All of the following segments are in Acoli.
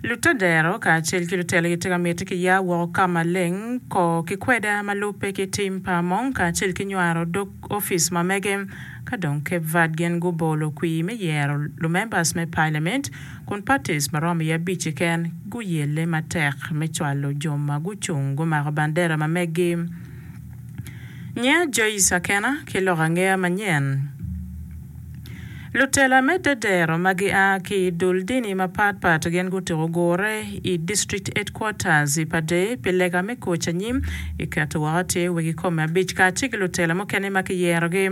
Lutadero kacel ki lutelogi tye ka miti ki ya woko ka maleng kor ki kweda ma lubbe ki tim pa Among kacel ki nywaro dog office ma mege. Ka dong Cape Verde gin gubolo kwir me yero lumembers me parliament kun parties ma romo i abic keken guyelle matek me cwalo jo ma gucung gumako bandera ma meggi. Nyiya Joyce Akena ki lok angeya manyen. Lutela me dedero ma gia ki i dul dini mapatpat gin gutuko gure i District Headquarters i Pader pi lega me koc anyim i keto woko tye wegi kome abic kacel ki lutela mukene ma kiyerogi.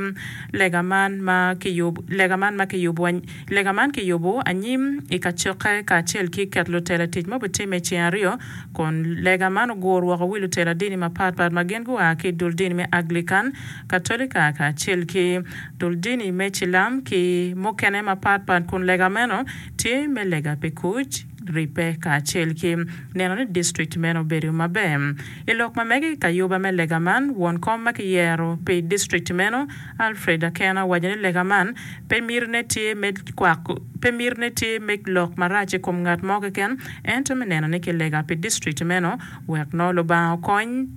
Lega man ma Lega man ma kiyubo Lega man kiyubo anyim i kacokke kacel ki keto lutela i tic ma obitimme i ceng aryo kun lega man ogur woko wi lutela dini mapatpat ma gin gua ki i dul dini me Aglican, Katolika kacel ki dul dini me cilam ki mukene mapat pat kun lega meno tye me lega pi kuc, ribbe kacel ki neno ni district meno bedo maber. I lok ma mege i kayuba me lega man, won kom ma kiyero pi district meno, Alfred Akena owaco ni lega man pe mitine tye me kwako pe mitine tye me lok marac i kom ngat mo keken ento me neno ni kilega pi district meno wek nongo Lubanga okony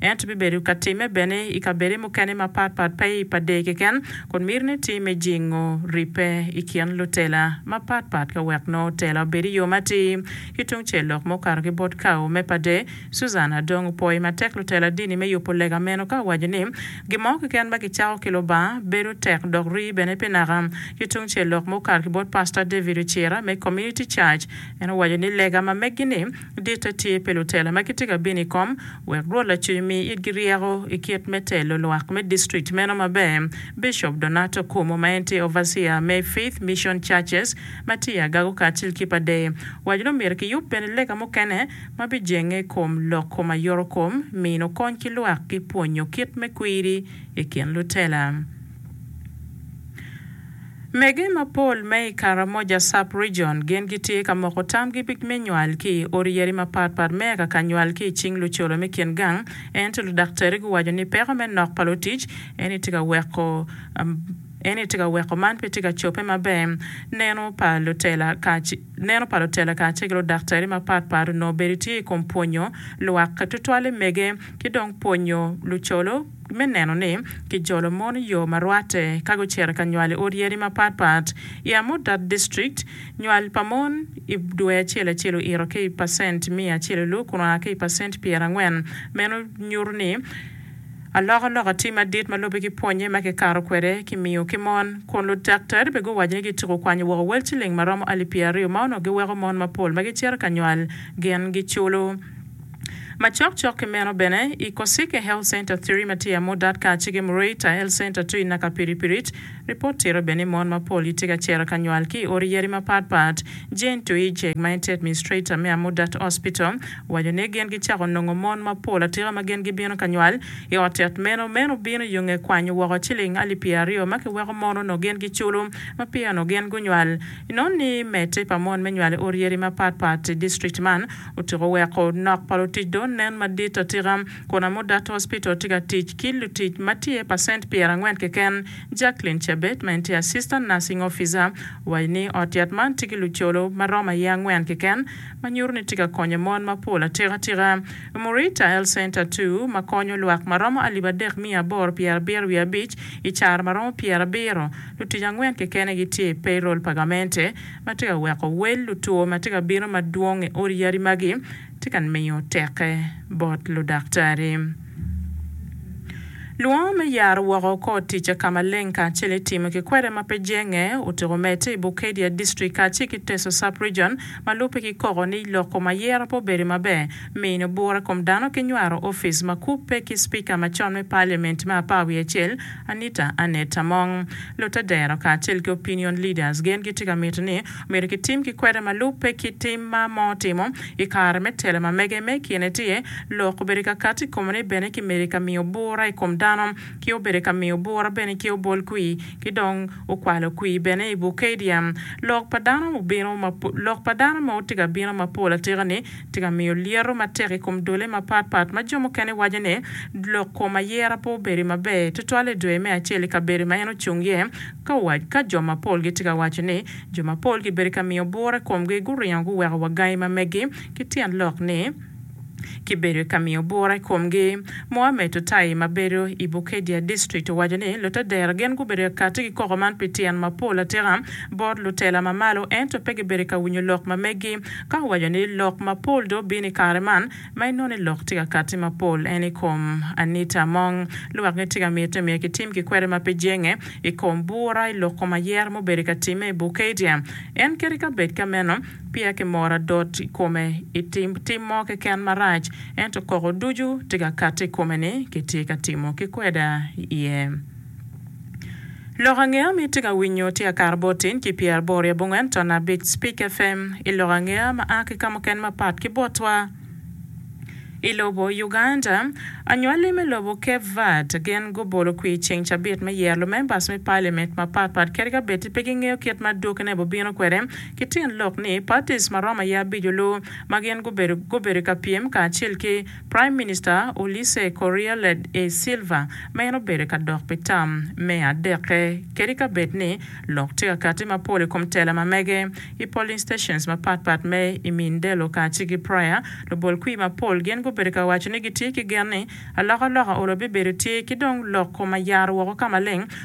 Ento bibedo ka timme bene i kabede mukene mapat pat pe i pa dee keken, kun miti ni tii me jingo ribbe i kin lutela mapat pat ka wek nongo tela obed i yo matir. Ki tungcel lok ma okato ki bot kawo me pa dee, Susan Adong opwoyo matek lutela dini me yubo lega meno ka owaco ni, Gin mo keken ma kicako ki Lubanga bedo tek dok rii bene pi naka. Ki tungcel lok ma okato ki bot Pastor David Ocira me Community Church, en owaco ni lega ma megi-ni, Ditte tye pi lutela ma gitye ka bino i kom wek Rwot Lacuny omi itgi ryeko i kit me telo lwak me distrikt meno maber. Bicop Donato Cuomo ma en tye Overseer me Faith Mission Churches ma tye i Agago kacel ki pa Deye owaco ni omyero kiyub bene lega mukene ma bijenge i kom lok kom aye orokom, mino kony ki lwak ki pwonyo kit me kwiri i kin lutela. Mege mapol ma i Karamoja Sub-Region gin gitye ka moko tamgi me nywal ki i odi yadi mapat pat me aka ka nywal ki i cing lucola me kin gang, ento ludaktari guwaco ni peko me nok pa lutic eni tye ka weko eni tye ka weko man pe tye ka cobbe maber. Neno pa lutela Neno pa lutela kacel ki ludaktari mapat pat onongo bedo tye i kom pwonyo lwak tutwale mege ki dong pwonyo lucolo, me neno ni kijolo mon i yo ma rwatte ka gucito ka nywal i odi yadi mapat pat. I Amudat District, nywal pa mon i dwe acel acel oito ki i pacent miya acel i loo kun oa ki i pacent pyera angwen. Meno nyuto ni alokaloka tye madit ma lubbe ki pwonye ma kikato kwede ki miyo ki mon, kun ludaktari bene guwaco ni gityeko kwanyo woko wel ciling ma romo alip pyera aryo ma onongo giweko mon mapol ma gicito ka nywal gin giculo. Macok cok ki meno bene, i Kosike Health Center ii ma tye i Amudat kaciki ki Mureita Health Center ii i Nakapiripiric, ripot tito bene ni mon mapol gitye ka cito ka nywal ki i odi yadi mapat pat. Jane Tuijek, ma en tye Administrator me Amudat Hospital, owaco ni gin gicako nongo mon mapol atika ma gin gibino ka nywal i ot yat meno. Meno bino yo nge kwanyo woko ciling alip pyeraryo ma kiweko mon onongo gin giculo ma peya onongo gin gunywal. Inongo ni medde pa mon me nywal i odi yadi mapat pat i district man, Otyeko weko nok pa lutic dong nen madit atika, kun Amudat Hospital tye ka tic ki lutic ma tye pacent pyerangwen keken. Jacqueline Chebet, ma en tye Assistant Nursing Officer, owaco ni ot yat man tye ki lucolo ma romo aye angwen keken, ma nyuto ni tye ka konyo mon mapol atikatika. Umurita Health Center ii, ma konyo lwak ma romo alip adek miya aboro pyerabiro wiye abic, i caro ma romo pyerabiro, lutic angwen kekene gitye i payroll pa gamente, ma tye ka weko wel lutwo ma tye ka bino madwong i odi yadi magi tye ka miyo teke bot ludaktari. Lwongo me yaro woko kor ticca ka maleng kacel i timo ki kwede ma pe jenge otyeko medde i Bukedea District kacel ki Teso Sub-Region ma lubbe ki koko ni loko mayero pe obedo maber, mino bura i kom dano ki nywaro opic ma kubbe ki Spika macon me Parliament me apar wiye acel, Anita Annet Among, Lutadero kacel ki opinion leaders gen gitye ka mito ni omyero kitim ki kwede ma lubbe ki tim ma moo otimo i kare me telo ma mege me ikine tye lok obedo ka kati i kome ni bene ki medo ka miyo bura i kom dano ki obedo ka miyo bura bene ki obol kwii ki dong okwalo kwii bene i Bukadia lok pa dano obino ma lok pa dano ma otye ka bino ma pol atika ni Tye ka miyo lyeto matek i kom dole mapat pat ma jo mukene waco ni lok kom ayera pe obedi maber tutwal i dwe me acel i kabedo ma en ocung iye ka owac ka jo mapol gitye ka waco ni jo mapol gibedo ka miyo bura i komgi guringo guweko wa gangi ma megi ki tyen lok ni kibedo ka miyo bura i komgi. Mohammed Otayi ma bedo i Bukedea District owaco ni lutadera gin gubedo ka kati ki koko man pi tyen mapol atika bot lutela ma malo ento pe gibedo ka winyo lok ma megi Ka waco ni lok mapol dong bino i kare man, ma inongo ni lok tye ka katti mapol en i kom anita mong. Lwak ni tika mitte myero kitim ki kwede ma pe jenge i kom bura i lok kom ayera mubedo ka timme i Bukadia? En keri ka bed ka meno, peya ki moro adot i kome i tim tim mo keken marac, ento koko ducu tye ka katti i kome ni kitye ka timo ki kweda iye. Lok angeya ma itye ka winyo tye Akar Botin ki Pyer Bor i abongwen ton abic Spik FM i lok angeya ma a ki ka mukene mapat ki botwa i lobo Uganda. Anywali me lobo Cape Verde gin gubolo kwir ceng cabit me yero lumembers me Parliament mapat pat kadi ka bed-ti pe gingeyo kit ma dwokkine bubino kwede ki tin lok ni parties marom aye abic-olu ma gin gubedo gubedo ka pyem kacel ki Prime Minister Ulisse Correa led e Silva ma en obedo ka dok pi tam me adekke kadi ka bed ni lok tye ka kati mapol i kom tela ma mege i polling stations mapat pat me i Mindelo kaci ki Praia. Lubol kwir mapol gin gubedo ka waco ni gitye ki gen ni alokaloka olo bibedo tye ki dong loko ma yaro woko ka maleng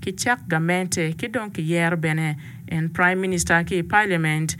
ki cak gamente ki dong ki yero bene en prime minister ki i parliament.